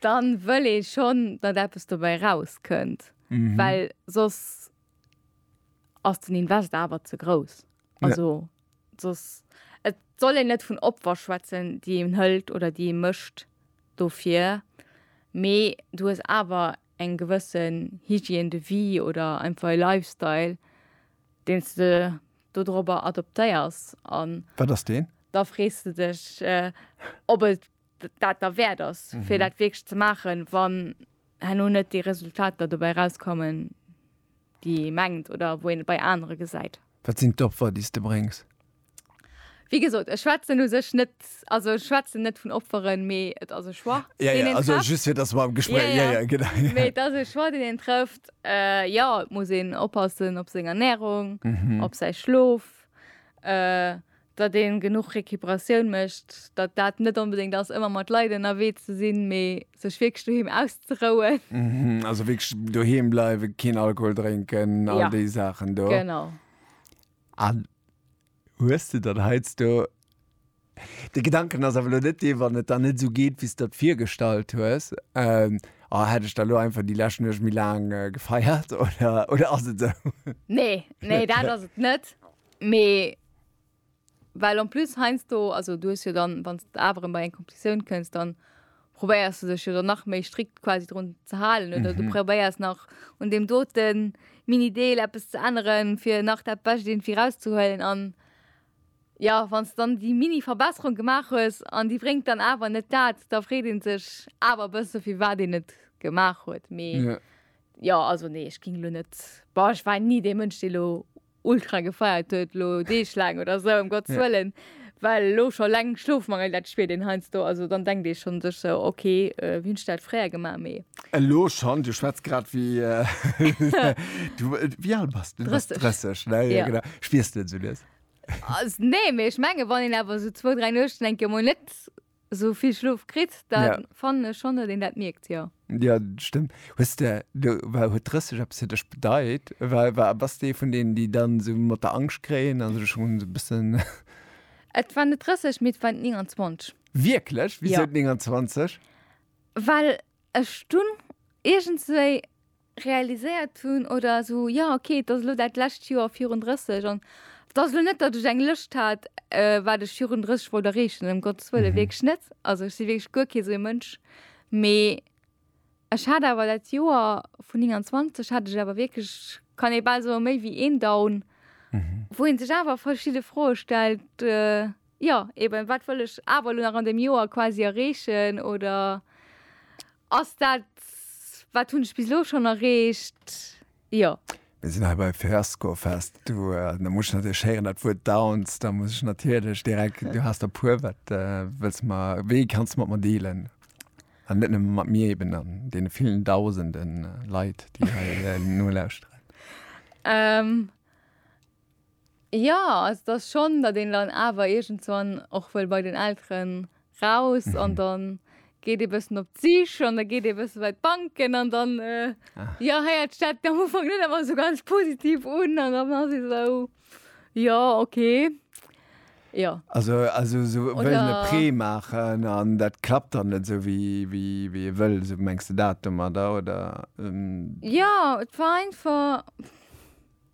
dann wëll ee schonn, datt eppes dobäi rauskënnt, well soss ass den Invest awer ze grouss. Also soss, et soll een net vun Opfer schwätzen, déi een hëlt oder déi ee mécht dofir, mee du hues awer eng gewësse Hygiène de vie oder einfach e Lifestyle, deen s de dodrobber adoptéiers. Wat ass deen? Da frees de dech, ob et dat derwäert ass, fir dat wierklech ze maachen, wann herno net déi Resultater dobäi erauskommen, déi ee mengt oder wou een et bei anere gesäit. Wat sinn d'Opfer, déi s de bréngs? Wéi gesot, ech schwätzen u sech net, also ech schwätzen net vun Opferen, mee et ass e Choix, deen een trëfft. Jo, jo, just fir dass mer am Gespréich, jo, jo, genau. Mee et ass e Choix, deen een trëfft. Jo, et muss een oppassen op seng Ernärung, op säi Schlof. datt ee genuch Recuperatioun mécht, datt dat net onbedéngt ass ëmmer mat Leit ënnerwee ze sinn, mee sech wierklech doheem auszerouen. Also wierklech doheem bleiwen, keen Alkohol drénken, all déi Saachen do. Genau. An hues de dann heiansdo de Gedanken, ass awer elo net dee wann et dann net esou geet wéi s de der virgestallt hues, oh hätt ech da elo einfach déi lescht Nuecht méi laang gefeiert oder ass et esou? Nee, nee dat ass et net. Mee well en plus heiansdo, also du hues jo dann, wann s de awer erëm bei eng Competitioun kënns, dann probéiers du dech jo dann nach méi strikt quasi drun ze halen oder du probéiers nach un deem dote Mini-Deel eppes ze änneren, fir nach dat Bescht iergendwéi erauszehuelen. An jo, wann s de dann déi Mini-Verbesserung gemaach hues an déi bréngt dann awer net dat, da freet ee sech awer e bësse fir wat een et gemaach huet. Mee jo, also nee, ech géing elo net, boah, ech war ni dee Mënsch, dee elo ultra gefeiert huet lo Deeg laang oder sou em Gottes Wëllen, well lo scho leng Schlofmangel dat spiert een heiansdo, also dann denkt ee schonn sech sou ok wéi hunn ech dat fréier gemaach, mee. Elo schonn, du schwätz grad wéi du wéi al bass de? Du bass 30, ne? Jo genau, spiers de en sou lues? Nee, mee ech mengen wann een awer sou zwou, dräi Nuechten eng Kéier emol net sou vill Schlof kritt, da ja. fannen ech schonn, datt een dat mierkt, jo. Ja, stëmmt. Hues de, du, war, huet 30 eppes fir dech bedeit? War, war, bass dee vun deenen, déi dann sou mat der Angscht kréien an sech schon sou bëssen. Et war net 30, mee et war 29. Wierklech? Wisou ja. 29? Well ech dunn iergendswéi realiséiert hunn oder esou, jo ok, et ass elo dat lescht Joer virun 30 an et ass elo net, datt ech eng Lëscht hat, wat ech virun 30 wollt erreechen, ëm Gottes wëllen, wierklech net. Also ech si wierklech guer kee sou ee Mënsch. Mee ech hat awer dat Joer vun 29 hat ech awer wierklech, kann ee bal soen, méi wéi een Down, wou ee sech awer verschidde Froe stellt, jo eben, wat wëll ech awer elo nach an deem Joer quasi erreechen oder Ass dat, wat hunn ech bis elo schonn erreecht? Jo. Mir sinn hei bei Fiasco Fest. Du, da muss ech natierlech héieren, dat Wuert Downs. Da muss ech natierlech direkt, du has der puer, wat wëlls de mer, wéi kanns de mat mer dealen? An net nëmme mat mir eben, an deene villen Dausende Leit, déi hei nolauschteren. Jo, also dass schon, datt een dann awer iergendswann och wëll bei den Elteren raus an dann geet ee bëssen op d'Sich an da geet ee bësse bei d'Banken an dann, jo, héiert sech dat am Ufank net ëmmer esou ganz positiv un an dann ass ee esou, jo, okay, jo. Also also esou wëllen e Prêt maachen an dat klappt dann net esou wéi ee wëll, esou mengs de dat domadder, oder? Jo, et war einfach.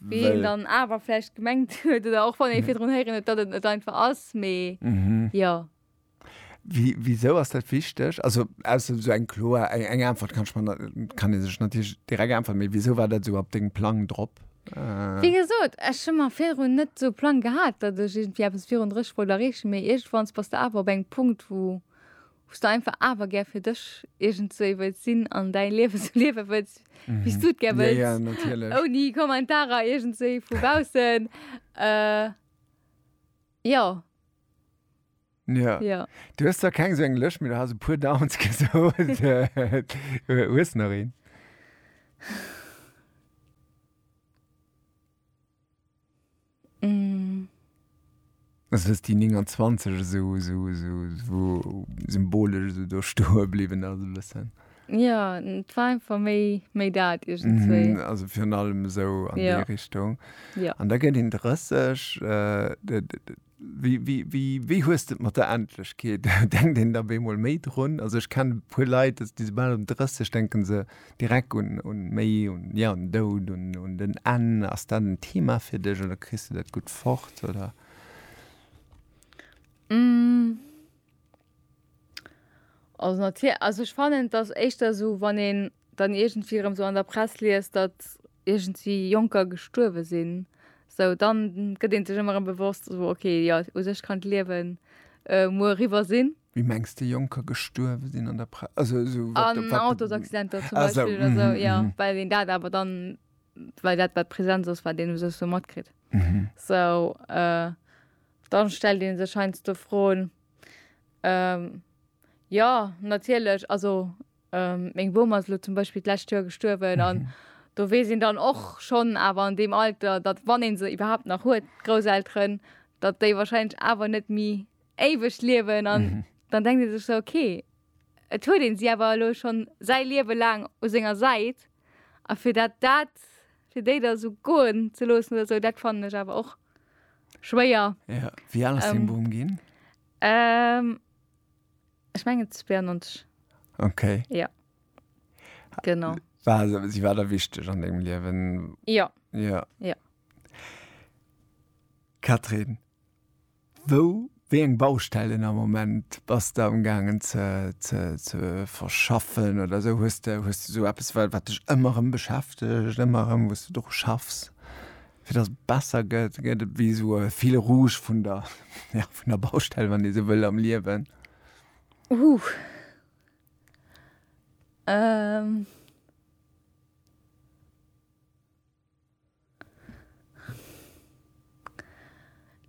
Wéi een dann awer vläicht gemengt huet oder och wann ee virdrun héieren huet, datt et net einfach ass, mee jo. Wisou ass dat wichteg? Also ausser esou eng kloer, eng Äntwert kann ech mer net, kann ee sech natierlech direkt äntweren, mee wisou war dat esou op dengem Plang drop? Wéi gesot, ech hu mer virdrun net esou e Plang gehat, datt ech iergendwéi eppes virun 30 wollt erreechen, mee iergendwanns bass de awer op engem Punkt, wou. Hues de einfach awer gär fir dech iergend sou ee wëlls sinn an däi Liewe sou liewe wëlls wéi s du et gär wëlls? Ja, ja, natierlech. Ouni Kommentarer iergend sou ee vu baussen. Jo. Jo. Jo. Du hues zwar keng sou eng Lëscht, mee du has e puer Downs gesot. Hues nach een? Also dass déi 29 esou esou esou esou symbolesch esou do stoe bliwwen ass e bëssen. Jo, et war einfach méi méi dat iergendswéi. Mhm, also virun allem esou an déi Richtung. Jo. An da gëtt een 30. Wéi hues de et mat der Endlechkeet? Denkt een da bemol méi drun? Also ech kennen e puer Leit, déi soubal se 30 denken se. direkt un un méi un ja un Doud un un den Enn ass dat en Thema fir dech oder kriss de dat gutt fort oder? Also natierl also ech fannen dass éischter esou wann een dann iergendwéi erëm esou an der Press liest datt iergendwéi Jonker gestuerwe sinn esou dann gëtt een sech ëmmer erëm bewosst esou ok jo u sech kann d'Liewen muer eriwwer sinn. Wéi mengs de Jonker gestuerwe sinn an der Pre-, also esou wat, An wat, Autosaccidenter zum Ah, esou, Beispill oder esou, mhm, jo, mhm. well een dat awer dann, well dat wat Präsenz ass, wat een esou esou matkritt. Esou, euh, dann stellt ee sech heiansdo Froen, euh, jo, natierlech, also, euh, meng Bomm ass elo zum Beispill d'lescht Joer gestuerwen an do weess een dann och schonn awer an deem Alter, datt wann ee se iwwerhaapt nach huet, d'Grousselteren, datt déi wahrscheinlech awer net méi, éiwegt liewen an dann denkt ee sech sou okay et huet een si awer elo schonn säi Liewe laang u senger Säit a fir dat dat fir déi da sou goen ze loossen oder sou dat fannen ech awer och schwéier. Ja, wéi al ass dee Boom ginn? Ehm ech mengen 92. Okay. Ja. Genau. War se, si war der wichteg an dengem Liewen? Ja. Ja. Ja. Catherine, Wou, wéi eng Baustellen am Moment bass de am gaangen ze, ze, ze verschaffen oder esou? Hues de, hues de esou eppes wat, wat dech ëmmer erëm beschäftegt, ëmmer erëm wou s de dru schaffs, fir datt et besser gëtt? Gëtt et wéi esou e fil rouge vun der, jo, vun der Baustell, wann een esou wëll, am Liewen? Huh. Ehm.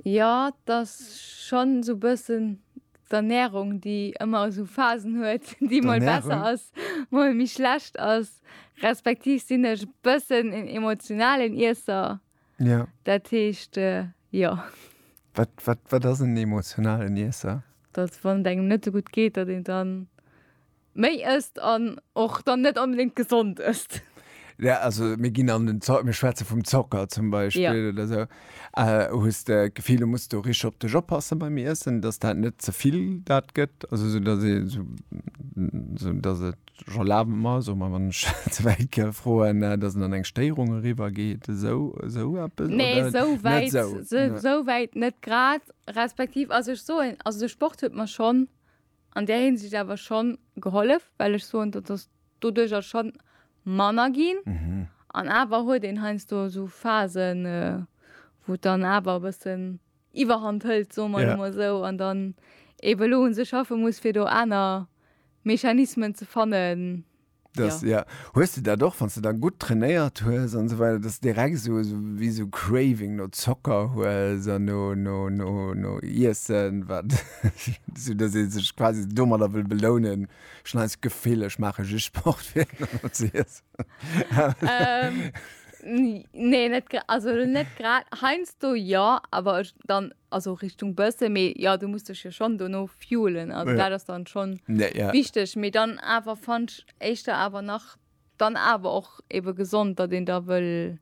Jo, et ass schonn esou e bëssen d'Ernärung, déi ëmmer esou Phasen huet, déi mol besser ass, mol méi schlecht ass. Respektiv sinn ech e bëssen en emotionalen Iesser. Dat heescht, jo. Wat ass en emotionalen Iesser? Datt wann et engem net esou gutt geet, datt een dann. Méi ësst an och dann net onbedéngt gesond ësst. Ja, also mir ginn an den Zo-, mir schwätze vum Zocker zum Beispill. Ja. Oder esou. Hues de d'Gefill, du muss do richteg op dech oppassen beim Iessen, dass dat net ze vill dat gëtt? Also esou, dass ee sou, esou, dass et, ech erlabe mer, soe mer, wann ech ze wäit ka froen, dass en an eng Stéierung eriwwer geet, esou, esou eppes? Nee, Oder esou net wäit, esou? esou wäit net grad. Respektiv, also ech soen, also de Sport huet mer schonn an där Hinsicht awer schonn gehollef, well ech soen, dat ass doduerjer schonn manner ginn. An awer huet een heiansdo esou Phasen, wou et dann awer e bëssen Iwwerhand hëlt, soe mer emol esou, an dann eebe elo u sech schaffe muss, fir do aner Mechanismen ze fannen, Das, ja. ja. Hues du dat och, wann du dann gut trainéiert hues an so weiter, dass direkt so, so wie so Craving no Zocker hues an no, no, no, no Iessen, wat so, dass ich sich quasi dummer da will belohnen. Schon als Gefühl, ich mache just Sport für zu essen. ähm, nee, net, also net grad. Heinz du ja, aber ich dann also Richtung Bësse méi ja du muss dech jo schon dono fuelen also dat ass dann schon wichteg méi dann awer fandsch éischter awer nach dann awer och ebe gesond dat een da wëll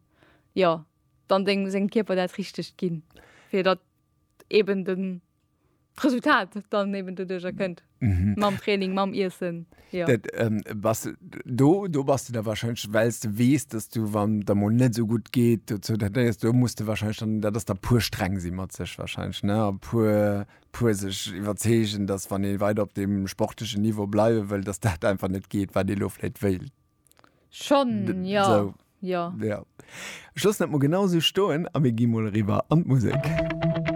ja dann deng seng Kierper dat richtegt ginn fir dat eben den Resultat dann eben doduercher kënnt. Mhm. Mam Training, mam Iessen. Ja. Dat, ähm, was, do, do bas du da wahrscheinlech, wells du wees, dass du wann der mol net so gut geet, do zo dat nees, do muss du wahrscheinlech dann, dat ass da puer streng si mat sech wahrscheinlech, ne, a puer puer sech iwwerzeegen, dass wann ee weider op deem sportlechen Niveau bleiwe wëll, dass dat einfach net geet, wat ee lo vläit wéilt. Schon, ja. So. Ja. Ja. Ech loossen dat mol genau sou stoen a mir gi mol eriwwer an d'Musek.